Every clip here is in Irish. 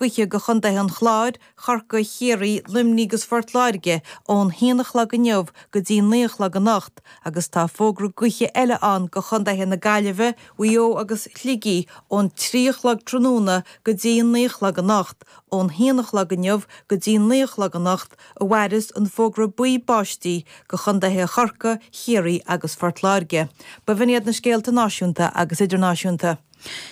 Gaoithe go Chontaetha an Chláir, Chorcaigh, Chiarraí, Luimnigh agus Phort Láirge ón haon a chlog inniu go dtí'n naoi a chlog anocht agus tá fógra gaoithe eile ann go Chontaetha na Gaillimhe, Mhaigh Eo agus Shligigh ón trí a chlog tráthnóna go dtí'n naoi a chlog anocht. Ón haon a chlog inniu go dtí'n naoi a chlog anocht a mhaireas an fógra buí báistí go Chontaetha Chorcaigh, Chiarraí agus Phort Láirge. Ba shin iad na scéalta náisiúnta agus idirnáisiúnta.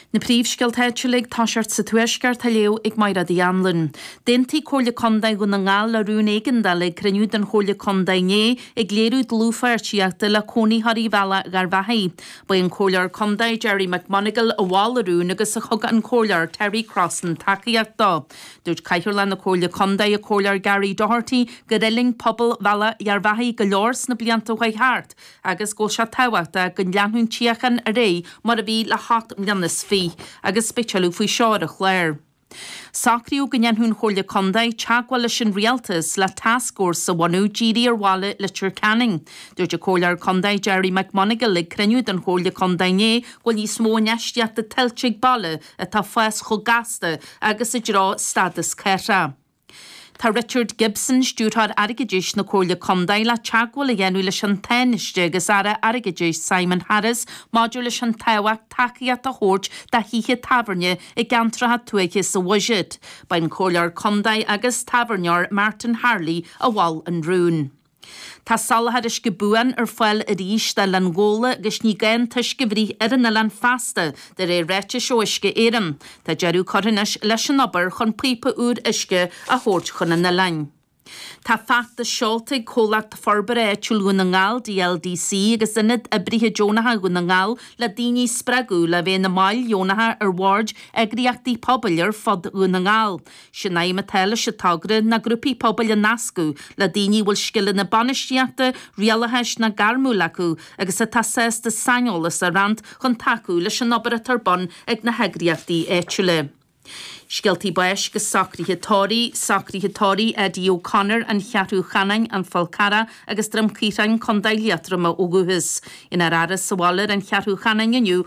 Na príomhscéalta áitiúla ag tosacht sa Tuaisceart, dá léamh ag Maighréad Uí Annluain. D'aontaigh Comhairle Contae Dhún na nGall le rún éigeandála ag cruinniú den Chomhairle Contae inné, ag léiriú dlúthpháirtíochta le cónaitheoirí Bhealach Gharbhachaidh. Ba é an Comhairleoir Contae Gerry McMonagle a mhol an rún agus a thug an Comhairleoir Terry Crossan tacaíocht dó. Dúirt Cathaoirleach na Comhairle Contae, an Comhairleoir Gary Doherty, gur fhuiling pobal Bhealach Gharbhachaidh go leor sna blianta a chuaigh thart, agus go bhfuil sé tábhachtach go leanfadh an tsíocháin ar aghaidh mar a bhí le hocht mbliana is fiche, agus beidh tuilleadh faoi seo ar an chlár. Socraíodh go ndéanfadh an Chomhairle Contae teagmháil leis an Rialtas le tascfhórsa a bhunú dírithe ar bhaile Leitir Ceanainn. Dúirt an Comhairleoir Contae Gerry McMonagle ag cruinniú den Chomhairle Contae inné go bhfuil níos mó infheistíochta tuillte ag baile atá ag fás chomh gasta agus i dtreo stádas cathrach. Tá Richard Gibson, Stiúrthóir Airgeadais na Comhairle Contae, le teagmháil a dhéanamh leis an Tánaiste agus Aire Airgeadais Simon Harris maidir leis an tábhacht tacaíocht a thabhairt do thithe tábhairne i gceantracha tuaithe sa bhuiséad. Ba é an Comhairleoir Contae agus tábhairneoir Martin Harley a mhol an rún. Tá soláthar uisce buan ar fáil arís d'Oileán Ghabhla agus ní gá an t-uisce a bhruith ar an oileán feasta, de réir ráitis ó Uisce Éireann. Tá deireadh curtha anois leis an obair chun píopa úr uisce a thabhairt chun an oileáin. Tá feachtas seolta ag Comhlacht Forbartha Áitiúil Dhún na nGall, DLDC, agus Ionad Oibrithe Deonacha Dhún na nGall le daoine a spreagadh le bheith ina mbaill dheonacha ar bhoird eagraíochtaí pobail ar fud Dhún na nGall. Sé'n aidhm atá leis an togra ná grúpaí pobail a nascadh le daoine a bhfuil scileanna bainistíochta, rialachais ná gairmiúla acu agus atá sásta saineolas a roinnt chun tacú leis an obair atá ar bun ag na heagraíochtaí áitiúla. Scéaltaí Báis agus Socruithe Tórraimh, Socruithe Tórraimh, Eddie O'Connor, An Cheathrú Cheanainn, An Fál Carrach agus Droim Caorthainn, Co. Liatroma ó dhúchas. Déanfar é a fhaire sa bhaile ar an Cheathrú Cheanainn inniu,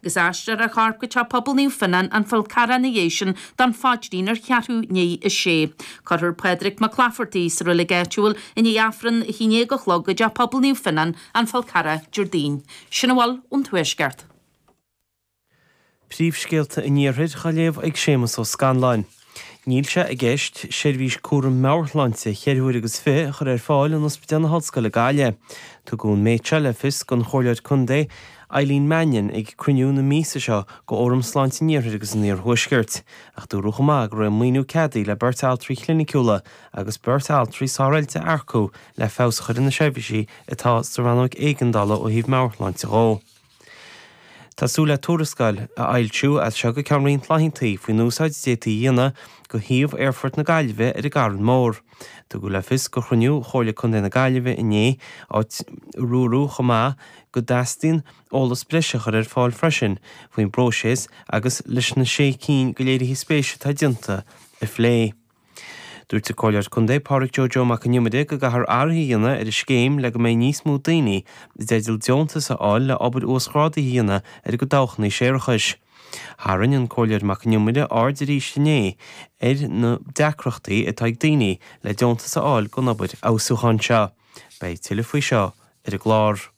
Agus aistreofar a chorp go Teach Pobail Naomh Fionán An Fál Carrach ina dhiaidh sin don phaidrín ar cheathrú i ndiaidh a sé. Cuirfear Pádraig McClafferty sa roilig áitiúil i ndiaidh Aifreann a haon déag a chlog i dTeach Pobail Naomh Fionán An Fál Carrach Déardaoin. Sin a bhfuil ón Tuaisceart. Príomhscéalta an Iarthair dá léamh ag Séamus Ó Scanláin. Níl sé i gceist seirbhís cúraim meabhairshláinte cheithre huaire agus fiche a chur ar fáil in Ospidéal na hOllscoile, Gaillimh. Tugadh an méid seo le fios don Chomhairleoir Contae Eileen Mannion ag cruinniú na míosa seo de Fhóram Sláinte an Iarthair agus an Iarthuaiscirt, ach dúradh chomh maith go raibh an maoiniú ceadaithe le beirt altraí cliniciúla agus beirt altraí sároilte a earcú le feabhas a chur ar na seirbhísí atá sa Rannóig Éigeandála ó thaobh meabhairshláinte dhó. Tá súil le tuarascáil a fhoilsiú as seo go ceann roinnt laethanta faoin úsáid a d'fhéadfaí a dhéanamh de shuíomh Aerfort na Gaillimhe ar an gCarn Mór. Tugadh le fios do chruinniú Chomhairle Contae na Gaillimhe inné áit ar dúradh chomh maith go dteastaíonn eolas breise a chur ar fáil freisin faoin bpróiseas agus leis na sé cinn de léirithe spéise atá déanta a phlé. Dúirt an Comhairleoir Contae Pádraig Joe Joe Mac an Iomaire go gcaithfear athruithe a dhéanamh ar an scéim le go mbeidh níos mó daoine i dteideal deontais a fháil le obair uasghrádaithe a dhéanamh ar a gcuid dabhchanna séarachais. Tharraing an Comhairleoir Mac an Iomaire aird arís inné ar na deacrachtaí atá ag daoine le deontais a fháil don obair fheabhsúcháin seo. Beidh tuilleadh faoi seo ar an gclár.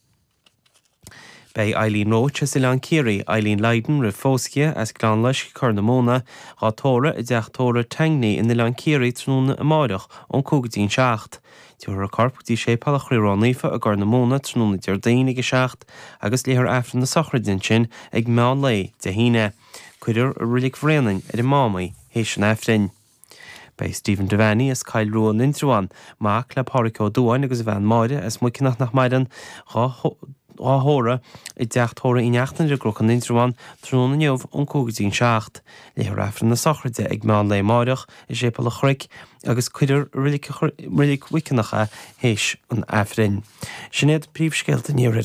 Beidh Eileen Roche as Oileán Ciarraí, Eileen Lydon roimh phósadh dhi as Gleann Loiscthe, Corr na Móna, dhá tórramh i dTeach Tórraimh Tangney in Oileán Ciarraí tráthnóna amárach ón 5 go dtí an 7. Tabharfar a corp go dtí Séipéal an Chroí Ró-Naofa i gCorr na Móna tráthnóna Déardaoin ag 7 agus léifear Aifreann na Sochraide ansin ag meán lae Dé hAoine. Cuirfear i Reilig Bhréanainn ar an Mám í théis an Aifrinn. Beidh Stephen Devaney as Coill Rua in Indreabhán, mac le Pádhraic Ó Duáin agus a bhean Máire, as Muiceanach nach maireann, dhá thórramh i dteach tórraimh Uí Neachtain ar an gCnoc in Indreabhán tráthnóna inniu ón cúig go dtí an seacht, léifear Aifreann na sochraide ag meán lae amáireach i Séipéal a' Chnoic agus cuirfear i reilig Mhuiceanach é théis an Aifrinn. Sin iad príomhscéalta an iarthair.